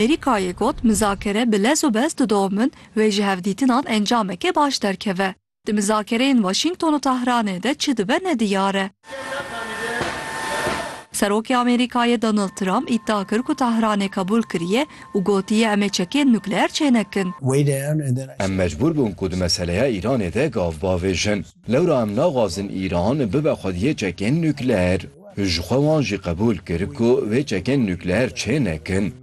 Amerîkayê got mizakere bi lez û bez dido min wê ji hevdîtinan encameke baş derkeve. Di mizakereyên Washington û Tahranê de çi dibe ne diyar e. Serokê Amerîkayê Donald Trump îdia kir ku Tahranê qebûl kiriye û gotiye em ê çekên nukleer çênekin. Em mecbûr bûn ku di meseleya Îranê de gav bavêjin. Lewra em naxwazin Îran bibe xwediyê çekên nukleer. Ji xwe wan jî qebûl kir ku vê çekên nukleer çê nekin.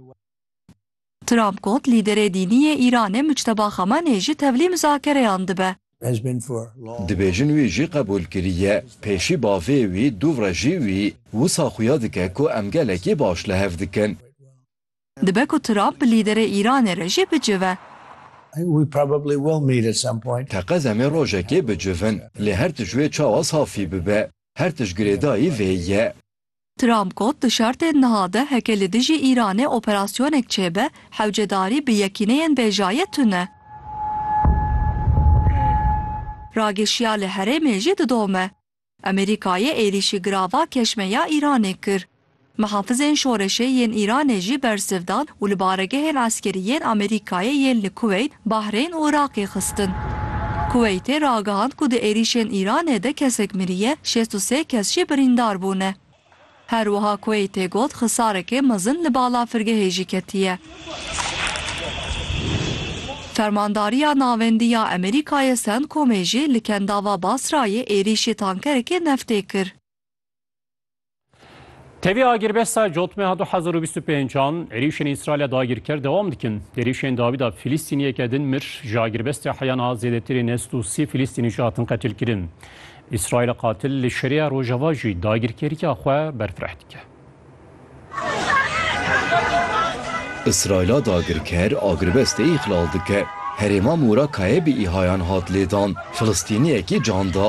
Trump got lîderê dînî yê Îranê Muçteba Xamenei jî tevlî muzakereyan dibe. Dibêjin wî jî qebûl kiriye. Pêşî bavê wî dûvre jî wî wisa xuya dike ku em gelekî baş li hev dikin. Dibe ku Trump bi lîderê Îranê re jî bicive. Teqez em ê rojekê bicivin. Lê her tişt wê çawa safî bibe. Her tişt girêdayî vê ye. Trump got di şertên niha de heke li dijî Îranê operasyonek çêbe, hewcedarî bi yekîneyên bêjayê tune. Rageşiya li herêmê jî didome. Amerîkayê êrîşî girava keşmeya Îranê kir. Mihafizên şoreşê yên Îranê jî bersiv dan û li baregehên eskerî yên Amerîkayê yên li Kuweyt, Bahreyn û Iraqê xistin. Kuweytê ragihand ku di êrîşên Îranê de kesek miriye, şêst û sê kes jî birîndar bûne. Her wiha koyê tê got xisarekê mezin li balafirgehê jî ketiye. Fermandariya Navendî ya Amerîkayê Centcomê jî li Kendava Basrayê êrîşî tankerekê neftê kir. Tevî agirbesta cotme ya du hezar û bîst û pênc an êrîşên Îsraîlê dagîrker dewam dikin. Êrîşên dawî de Filîstîniyeke din mir, ji agirbestê heyan a zêdetirê neh sed û sî Filîstînî jî hatin qetilkirin. Îsraîla qatil li Şêriya Rojava jî dagirkeriya xwe berfireh dike. Îsraîla dagirker a girbestê îxlal dike. Herêma Mûrakayê bi îhayan hat lêdan, filistîniyekî can da.